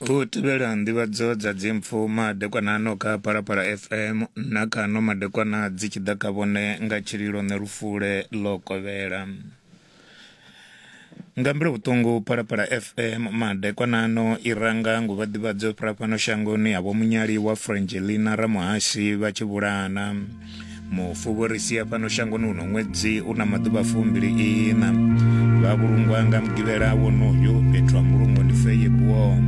U tevhela nḓivhadzo dza dzimpfu madekwana ano kha Phalaphala FM na kha ano madekwana dzi tshi ḓa kha vhone nga tshililo ṋe lufule ḽo kovhela. Nga mbilu vhuṱungu Phalaphala FM madekwana ano i ranga nguvha ḓivhadzo fhira fhano shangoni ha Vho Munyaliwa Frangelina Ramuhashe vha tshi vhulahana. mufu vho ri sia fhano shangoni uno ṅwedzi u na maḓuvha fumbili ina vha vhulungwa nga mugivhela wonoyo fhethu ha mbulungo ndi feye buom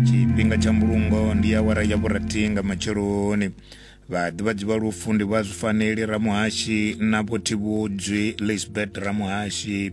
tshifhinga tsha mbulungo ndi awara ya vhurathi nga matsheloni vhaḓivhadzi vha lufu ndi vha zwifaneli ramuhashi na vhothivhudzwi lisbert ramuhashi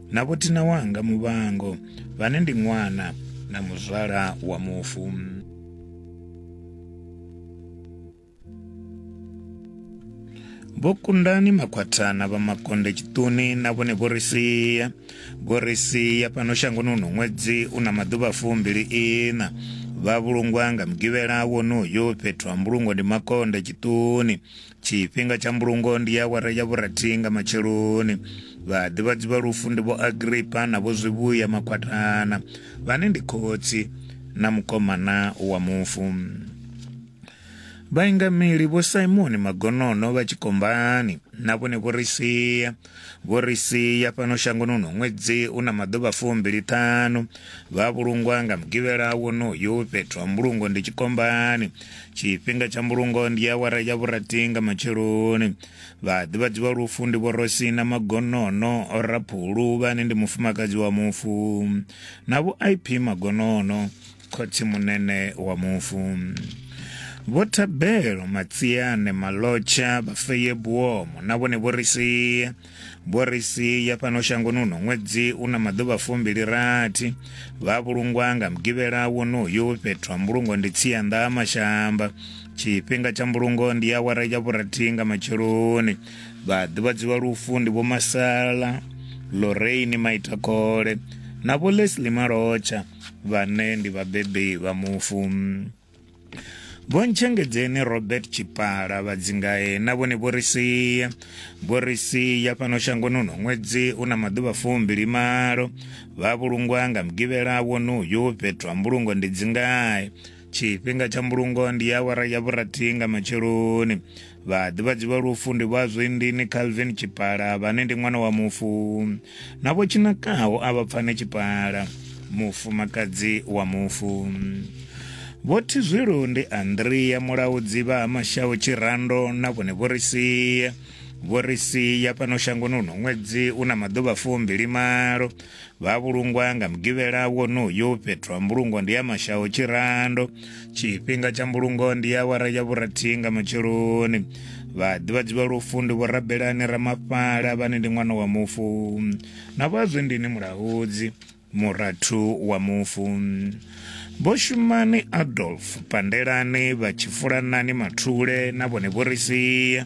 Na vhothina wanga muvhango, vhane ndi ṅwana na muzwala wa mufu. Vho kundani makhwathana vha makonde tshiṱuni na vhone vho ri sia vho ri sia fhano shangoni uno ṅwedzi u na maḓuvha fumbili ina vha vhulungwa nga mugivhela wonoyo fhethu ha mbulungo ndi makonde tshiṱuni tshifhinga tsha mbulungo ndi awara ya vhurathi nga matsheloni vhaḓivhadzi vha lufu ndi vho agripa na vho zwivhuya makhwathana vhane ndi khotsi na mukomana wa mufu vhaingameli vho simoni magonono vha tshikombani na vhone vho ri sia Vho ri sia fhano shangoni uno ṅwedzi u na maḓuvha fumbili-ṱhanu. Vha vhulungwa nga Mugivhela wonoyu. Fhethu ha mbulungo ndi tshikombani. Tshifhinga tsha mbulungo ndi awara ya vhurathi nga matsheloni. Vhaḓivhadzi vha lufu ndi Vho Rosina Magonono, Raphulu, vhane ndi mufumakadzi wa mufu, na Vho IP Magonono. khotsimunene wa mufu vho thabelo matsiane malotsha vhafeye buomo na vhone vho ri sia vho ri sia fhano shangoni uno ṅwedzi u na maḓuvha fumbili rathi vha vhulungwa nga mugivhela wonoyu fhethu ha mbulungo ndi tsianḓa ha mashamba tshifhinga tsha mbulungo ndi awara ya vhurathi nga matsheloni vha ḓivhadziwa lufu ndi vho masala loreini maitakole na vho lesli malotsha vhane ndi vhabebi vha mufu. Vho Ntshengedzeni Robert Tshipala vha Dzingae na vhone vho ri sia vho ri sia fhano shangoni uno ṅwedzi u na maḓuvha fumbili malo vha vhulungwa nga mugivhela wonoyu fhethu ha mbulungo ndi Dzingae tshifhinga tsha mbulungo ndi ya awara ya vhurathi nga matsheloni vhaḓivhadzi vha lufu ndi vha zwindini calvin tshipala vhane ndi ṅwana wa mufu na vho tshinakaho a vha pfane tshipala mufumakadzi wa mufu vho thizwilu ndi andrea mulaudzi vha ha mashaho tshirando na vhone vho ri sia vho ri sia fhano shangoni uno ṅwedzi u na maḓuvha fumbili malo Vha vhulungwa nga mugivhela wonoyu fhethu ha mbulungo ndi ya mashaho tshirando tshifhinga tsha mbulungo ndi awara ya vhurathi nga matsheloni vha ḓivhadzi vha lufu ndi vho rabelani ramafhala vhane ndi ṅwana wa mufu na vho azwendini mulaudzi murathu wa mufu vho shumani adolf pandelani vha tshifulanani mathule na vhone vho ri sia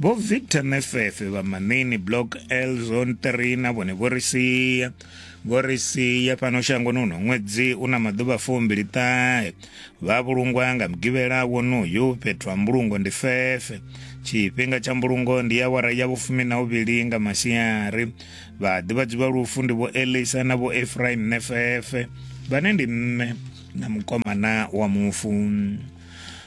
vho victor mefefe vha manini block l zone 3 na vhone vho ri sia vho ri sia fhano shangoni uno ṅwedzi u na maḓuvha fumbili ṱahe vha vhulungwa nga mugivhela wonoyu fhethu ha mbulungo ndi fefe tshifhinga tsha mbulungo ndi ya wara ya vhufumi na uvhili nga masiari vha ḓivhadzi vha lufu ndi vho elisa na vho efraim nefefe vhane ndi mme na mukomana wa mufu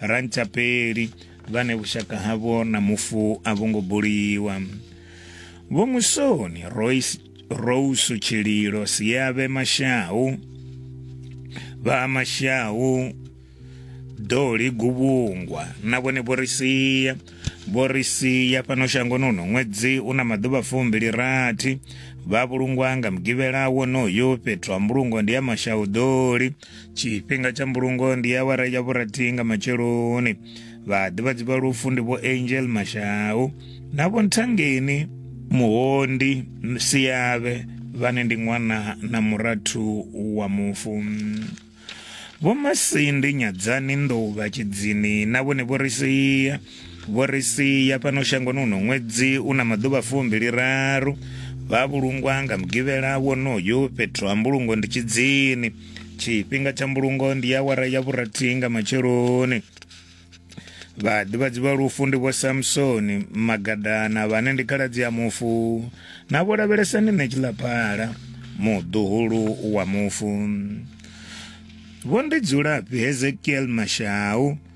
Rantapeli vhane vhushaka havho na mufu a vho ngo buliwa. Vho Musoni Royce Rose Tshililo Siave Mashau vha Mashau Doli Guvhungwa na vhone vho ri sia vho ri sia fhano shangoni uno ṅwedzi u na maḓuvha fumbili rathi vha vhulungwa nga mugivhela wonoyo fhethu ha mbulungo ndi ya Mashau Doli tshifhinga tsha mbulungo ndi awara ya vhurathi nga matsheloni vhaḓivhadzi vha lufu ndi vho angel mashau na vho nthangeni muhondi siyavhe vhane ndi ṅwana na murathu wa mufu vho masindi nyadzani nḓou vha tshidzini na vhone vho ri sia Vho ri sia fhano shangoni uno ṅwedzi u na maḓuvha fumbili-raru. Vha vhulungwa nga Mugivhela wonoyu fhethu ha mbulungo ndi Tshidzini. Tshifhinga tsha mbulungo ndi awara ya vhurathi nga matsheloni. Vhaḓivhadzi vha lufu ndi vho Samsoni Magadana vhane ndi khaladzi ya mufu na vho lavhelesani ne tshilaphala muḓuhulu wa mufu. Vho ndi dzulafhi Hezekiel Mashau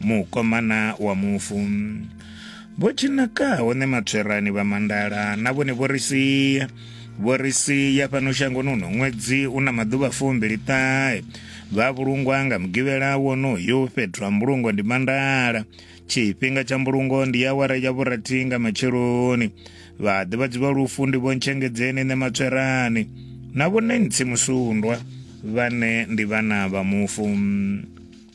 mukomana wa mufu vho tshinaka hone matswerani vha mandala na vhone vho ri sia vho ri sia fhano shangoni uno ṅwedzi u na maḓuvha fumbili ṱahe vha vhulungwa nga mugivhela wonoyo fhethu ha mbulungo ndi mandala tshifhinga tsha mbulungo ndi awara ya vhurathi nga matsheloni vha ḓivhadzi vha lufu ndi vhontshengedzeni nṋe matswerani na vhone ntsi musundwa vhane ndi vhana vha mufu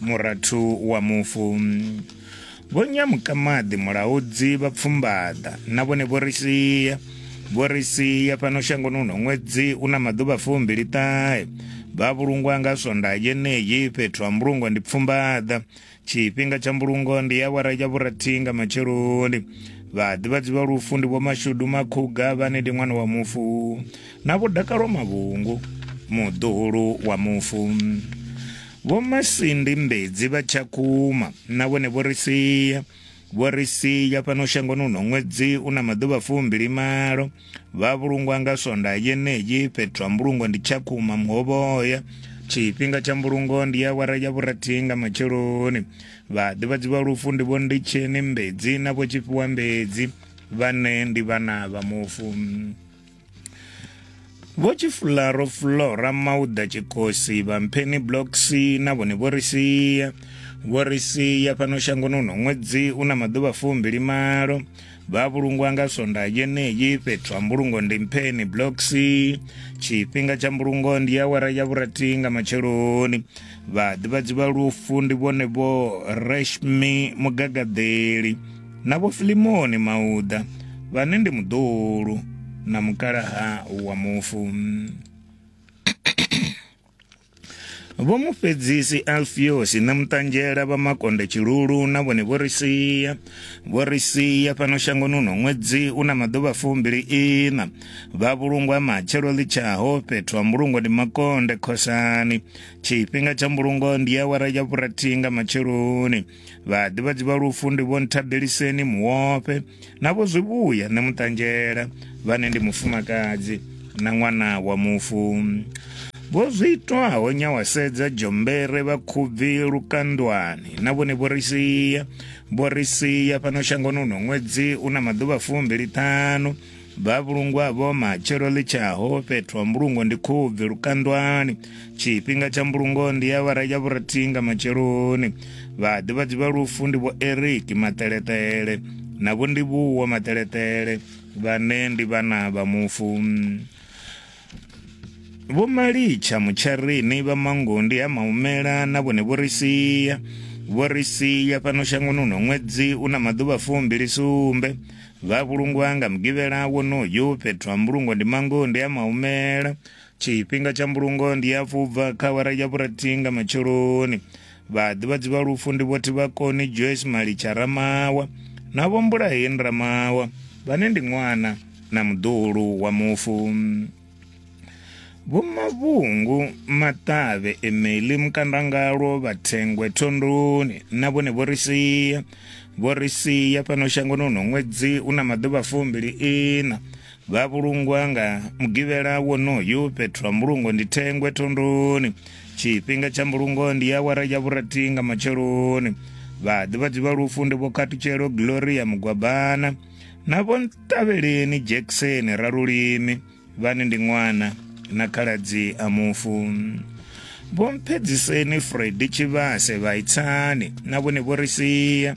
murathu wa mufu vho nyamukamaḓi mulaudzi vha pfumbaḓa na vhone vho ri sia vho ri sia fhano shangoni uno ṅwedzi u na maḓuvha fumbili ṱahe vha vhulungwa nga swonda yeneyi fhethu ha mbulungo ndi pfumbaḓa tshifhinga tsha mbulungo ndi ya wara ya vhurathi nga matsheloni vhaḓivhadzi vha lufu ndi vho mashudu makhuga vhane ndi ṅwana wa mufu na vho dakalo mavhungu muḓuhulu wa mufu Vho Masindi Mbedzi vha Tshakhuma na vhone vho ri sia vho ri sia fhano shangoni uno ṅwedzi u na maḓuvha fumbili malo vha vhulungwa nga sonda yeneyi fhethu ha mbulungo ndi tshakhuma muhovhoya tshifhinga tsha mbulungo ndi ya wara ya vhurathi nga matsheloni vhaḓivhadzi vha lufu ndi vho nditsheni mbedzi na vho tshifhiwa mbedzi vhane ndi vhana vha mufu vho tshifularo fulora mauda tshikosi vha mpheni blocks na vhone vho ri sia vho ri sia fhano shangoni uno ṅwedzi u na maḓuvha fumbili malo vha vhulungwa nga sonda yeneyi fhethu ha mbulungo ndi mpheni blocks tshifhinga tsha mbulungo ndi ya wara ya vhurathi nga matsheloni vhaḓivhadzi vha lufu ndi vhone vho reshmi mugagaḓeli na vho Filimoni Mauda vhane ndi muḓuhulu na mukalaha wa mufu. Vho mufhedzisi Alfiosi na muṱanzhela vha makonde tshilulu na vhone vho ri sia vho ri sia fhano shangoni uno ṅwedzi u na maḓuvha fumbili ina vha vhulungwa matshelo ḽitshaho fhethu ha mbulungo ndi makonde khosani tshifhinga tsha mbulungo ndi awara ya vhurathi nga matsheloni vhaḓivhadzi vha lufu ndi vho nthabeliseni muwope na vho zwivhuya nṋe muṱanzhela vhane ndi mufumakadzi na ṅwana wa mufu vho zwi itwaho nyawasedza dzhombere vha khubvi lukandwani na vhone vho ri sia vho ri sia fhano shangoni uno ṅwedzi u na maḓuvha fumbili ṱhanu vhavhulungwa vho matshelo ḽi tshaho fhethu ha mbulungo ndi khubvi lukandwani tshifhinga tsha mbulungo ndi ya vhara ya vhurathi nga matsheloni vhaḓivhadzi vha lufu ndi vho eriki maṱeleṱele na vho ndivhuwo maṱeleṱele vhane ndi vhana vha mufu Vho Malicha Mutsharini vha Mangondi ha Maumela na vhone vho ri sia vho ri sia fhano shangoni uno ṅwedzi u na maḓuvha fumbili sumbe vha vhulungwa nga mugivhela wonoyu fhethu ha mbulungo ndi Mangondi ha Maumela tshifhinga tsha mbulungo ndi ya fubva kha awara ya vhurathi nga matsheloni Vhaḓivhadzi vha lufu ndi vho Thivhakoni Joyce Malitsha Ramawa na vho Mbulaheni Ramawa vhane ndi ṅwana na muḓuhulu wa mufu. Vho Mavhungu Maṱavhe Emeli Mukandangalwo Vhathengwe Thondoni na vhone vho ri sia vho ri sia fhano shangoni uno ṅwedzi una maḓuvha fumbili ina vha vhulungwa nga mugivhela wonoyu fhethu ha mbulungo ndi thengwe thondoni tshifhinga tsha mbulungo ndi awara ya vhurathi nga matsheloni vhaḓivhadzi vha lufu ndi vho khathutshelo gloria mugwabana na vho ntavheleni jackson ralulimi vhane ndi ṅwana na khaladzi a mufu vho mphedziseni fredi tshivhase vhaitsani na vhone vho ri sia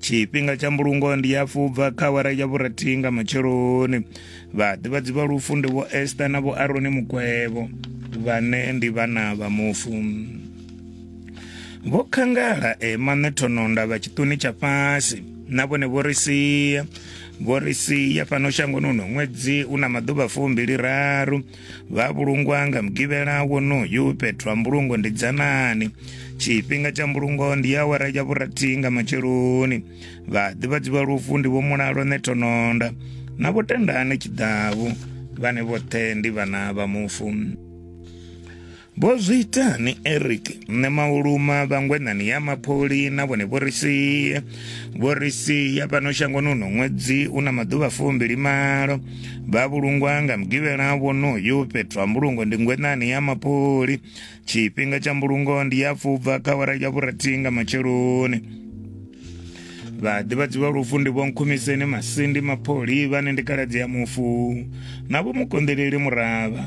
tshifhinga tsha mbulungo ndi ya fubva kha awara ya vhurathi nga matsheloni vhaḓivhadzi vha lufu ndi vho esta na vho aroni mukwevho vhane ndi vhana vha mufu vho khangala emaṋe thononda vha tshiṱuni tsha fhasi na vhone vho ri sia vho ri sia fhano shangoni uno ṅwedzi u na maḓuvha fumbili raru vha vhulungwa nga mugivhela wonoyu fhethu ha mbulungo ndi dzanani tshifhinga tsha mbulungo ndi ya awara ya vhurathi nga matsheloni vhaḓivhadzi vha lufu ndi vho mulalo netononda na vho tendane tshiḓavu vhane vhoṱhe ndi vhana vha mufu Vho zwi itani Eric? Nṋe mauluma vhangwenani ya mapholi na vhone vho ri sia. Vho ri sia fhano shangoni uno ṅwedzi u na maḓuvha fumbili malo. Vha vhulungwa nga mugivhela wonoyo fhethu ha mbulungo ndi ngwenani ya mapholi. Tshifhinga tsha mbulungo ndi ya fubva kha wara ya vhurathi nga matsheloni. vhaḓivhadzi vha lufu ndi vhonkhumiseni masindi mapholi vhane ndi kaladzi ya mufu na vho mukonḓeleli muravha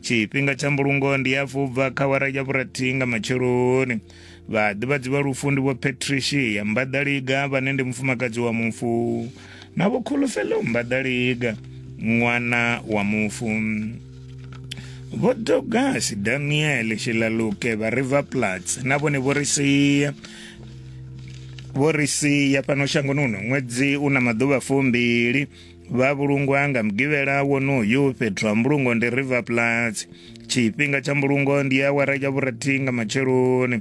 tshifhinga tsha mbulungo ndi hafhu u bva kha wara ya vhurathi nga matsheloni vhaḓivhadzi vha lufu ndi vho patricia mbaḓaliga vhane ndi mufumakadzi wa mufu na vho khulufhelo mbaḓaliga ṅwana wa mufu vho dogasi daniel shilaluke vha river plats na vhone vho ri sia vho ri sia fhano shangoni uno ṅwedzi u na maḓuvha fumbili vha vhulungwa nga mugivhela wonoyu fhethu ha mbulungo ndi river plats tshifhinga tsha mbulungo ndi awara ya vhurathi nga matsheloni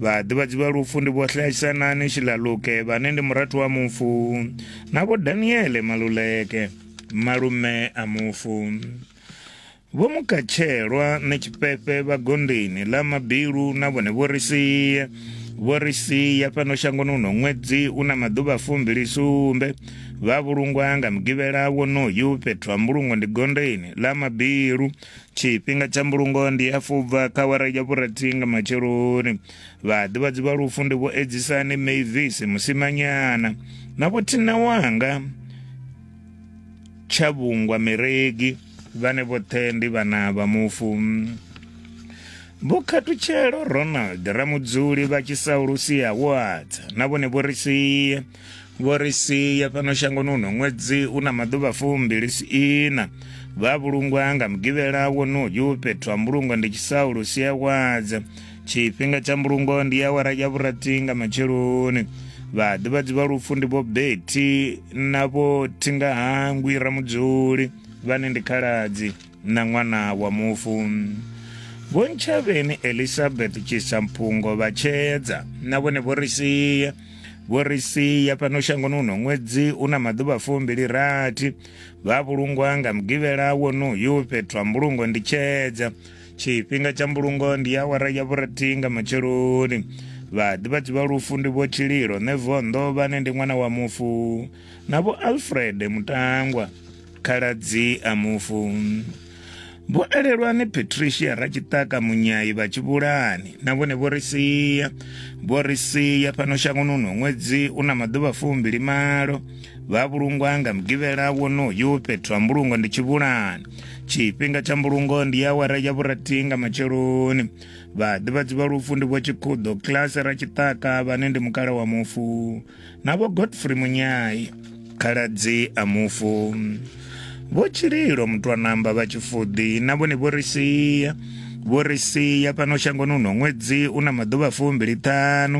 vhaḓivhadzi vha lufu ndi vhohlahisanani shilaluke vhane ndi murathu wa mufu na vho daniele maluleke malume a mufu Vho Mukatshelwa na Tshifhefe vha gondeni ḽa Mabilu na vhone vho ri sia vho ri sia fhano shangoni uno ṅwedzi u na maḓuvha fumbili sumbe vha vhulungwa nga mugivhela wonoyu fhethu ha mbulungo ndi gondeni ḽa Mabilu tshifhinga tsha mbulungo ndi ya fubva kha wara ya vhurathi nga matsheloni vhaḓivhadzi vha lufu ndi vho edzisani Mavis Musimanyana na vho Thina Wanga Tshavhungwa Miregi vhane vhoṱhe ndi vhana vha mufu Vho Khathutshelo Ronald Ramudzuli vha Tshisaulusi Awards na vhone vho ri sie vho ri sie fhano shangoni uno ṅwedzi u na maḓuvha fumbili ina vha vhulungwa nga mugivhela wonoyu fhethu ha mbulungo ndi Tshisaulusi Awards tshifhinga tsha mbulungo ndi awara ya vhurathi nga matsheloni vhaḓivhadzi vha lufu ndi vho beti na vho thingahangwi ramudzuli vhane ndi khaladzi na ṅwana wa mufu vho ntshavheni elizabeth tshisamphungo vha tshedza na vhone vho ri sia vho ri sia fhano shangoni uno ṅwedzi u na maḓuvha fumbili rathi vha vhulungwa nga mugivhela wonoyu fhethu ha mbulungo ndi tshedza tshifhinga tsha mbulungo ndi awara ya vhurathi nga matsheloni vhaḓivhadzi vha lufu ndi vho tshililo nevondo vhane ndi ṅwana wa mufu na vho alfred mutangwa khaladzi a mufu vho elelwani patricia ratshitaka munyayi vha tshivhulani na vhone vho ri sia vho ri sia fhano shangoni uno ṅwedzi u na maḓuvha fumbili malo vha vhulungwa nga mugivhela wonoyu fhethu ha mbulungo ndi tshivhulani tshifhinga tsha mbulungo ndi awara ya vhurathi nga matsheloni vhaḓivhadzi vha lufu ndi vho tshikhuḓo kilasi ra tshiṱaka vhane ndi mukala wa mufu na vho godfrey munyai khaladzi a mufu vho tshililo mutwanamba vha tshifuḓi na vhone vho ri sia vho ri sia fhano shangoni uno ṅwedzi u na maḓuvha fumbili ṱhanu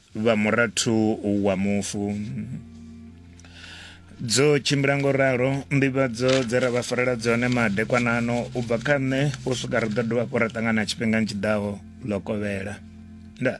vha murathu wa mufu dzo tshimbila ngo ralo nḓivhadzo dze ra vha farela dzone madekwanano u bva kha nṋe u swika ri ḓo dovha hafhu ra ṱangana tshifhingani tshiḓaho ḽo kovhela ndaa